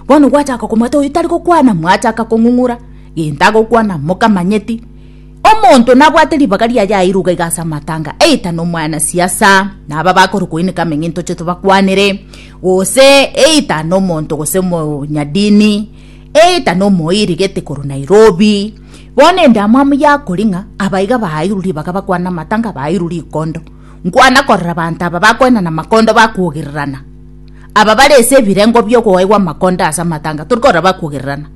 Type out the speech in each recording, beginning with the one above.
Bono gwachaka komwata oyio tari gokwana, mwachaka kong'ung'ura, gento agokwana, mokamanyeti. Omonto nabwate ribaga riaye airwe iga iga ase amatanga, eita nomwana siasa, na aba bakore koineka ameng'e ntoche tobakwanere, gose eita nomonto gose omonyadini, eita nomoiri gete korwa Nairobi. Bono ende amo amo yakori ng'a aba iga bairwe ribaga bakwane amatanga, bairwe rikondo. Nkwana korora abanto aba bakoenana amakondo bakogererana. Aba bare ase ebirengo bi'okogaigwa amakonda ase amatanga tori koraba kogererana.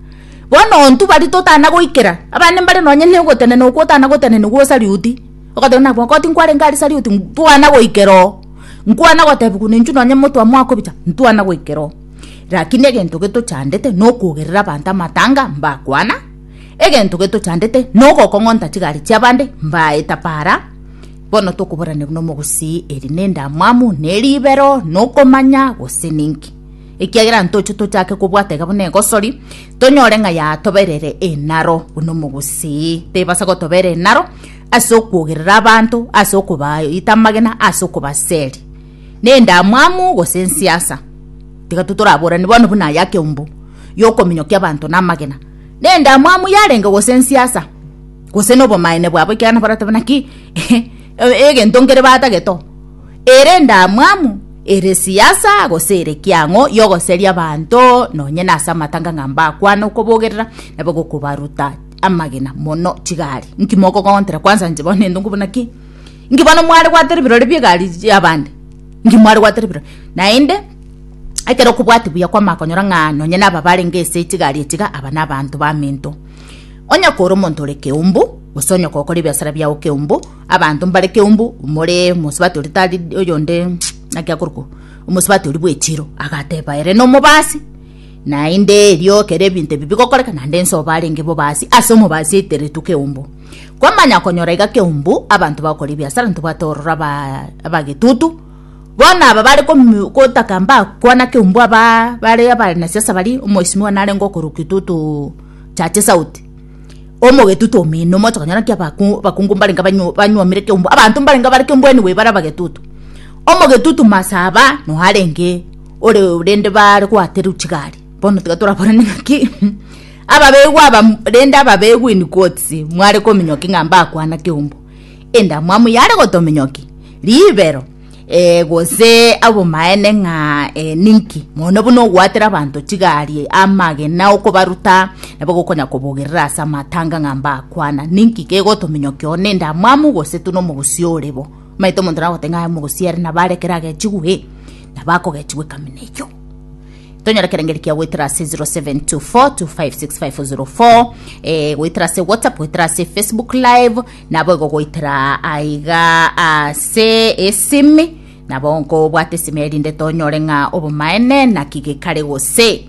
Bono ontwe bari totana goikera, abande mbare nonye nogotenena okwo otana gotenena gwo Sariuti, ogateba nabo nabo tinkwarenge are Sariuti, ntwana goikera oo, nkwana gotebiwa nenchwe nonye moto amo akobicha, ntwana goikera oo. Rakini egento getochandete nokogerera abanto amatanga mbakwana, egento getochandete nogokong'onta chigari chi'abande mbaeta paara, Bono tokoborana buna omogusii, eri nendamwamu, neribero, nokomanya, gose ninki? Ekiagera ntoche tochake kobwata iga buna egosori, tonyore ng'a yatoberere enaro buna omogusii. Tebasa gotobera enaro ase okwogerera abanto, ase okobaita amagena, ase okobaseri. Nendamwamu gose ensiasa? Tiga tu toraborane bono buna aya keumbu yokominyokia abanto namagena. Nendamwamu yarenge gose ensiasa? gose nobomaene bwabo ekiagera nabaratoba naki egento nkere batagete oo ere endamwamu ere siasa gose ere kiang'o yogoseria abanto nonye nase amatanga ng'a mbakwane okobogerera nabo gokobaruta amagena mono chigari nki mokogontera kwansa inche bono nento nkobuna ki nki bono mware gwatera ebirore bie egari y'abande nki mware gwatera ebirore naende ekero okobwati buya kwamanya konyora ng'a nonye naba barenge ase chigari echi iga aba nabanto bamento. Onye okore omonto ore keumbu, gose onye okokora ebiasara biao keumbu, abanto mbare keumbu, omore omosubati oria tari oyonde naki akorokwa omosubati oria bw'echiro, agateba ere nomobasi, naende erio ekero ebinto ebi bigokoreka naende inse oo barenge bobasi ase omobasi aiteretwe keumbu. Kwamanya konyora iga keumbu, abanto bagokora ebiasara ntobwate ororo abaa abagetutu. Bono aba bare komi- gotaka mbakwana keumbwa ba- bare abanasiasa baria, omoheshimiwa narenge okorwa Kitutu Chache South, omogetutu omino moche konyora naki abaku- abakungu mbarenge banyu- banyuomire keumbwa, abanto mbarenge bare keumbwa anyway bare abagetutu. Omogetutu Masaba noe arenge ore rende bare goaterwa chigari, bono tiga toraborane ng'aki ababegwa aba rende ababegwa in quotes, mware kominyokia ng'a mbakwana keumbwa. endamwamu yare gotominyoki ribero eh, gose abomaene ng'a eh, ninki mono buna ogwatera abanto chigari amagena okobaruta nabo gokonya kobogerera ase amatanga ng'a mbakwana ninki kegotominyoki one endamwamu gose tuna omogosi orebo maete omonto nagote ng'a omogosi ere nabarekera agechigwe nabakogechigwe ekamina eyo tonyora kerengeri kia gwetera ase 0724256504 eh, gwetera ase whatsapp gwetera ase facebook live Naboigo goetera aiga ase esimi, nabo nkobwate esimi erinde tonyore ng'a obomaene naki gekare gose.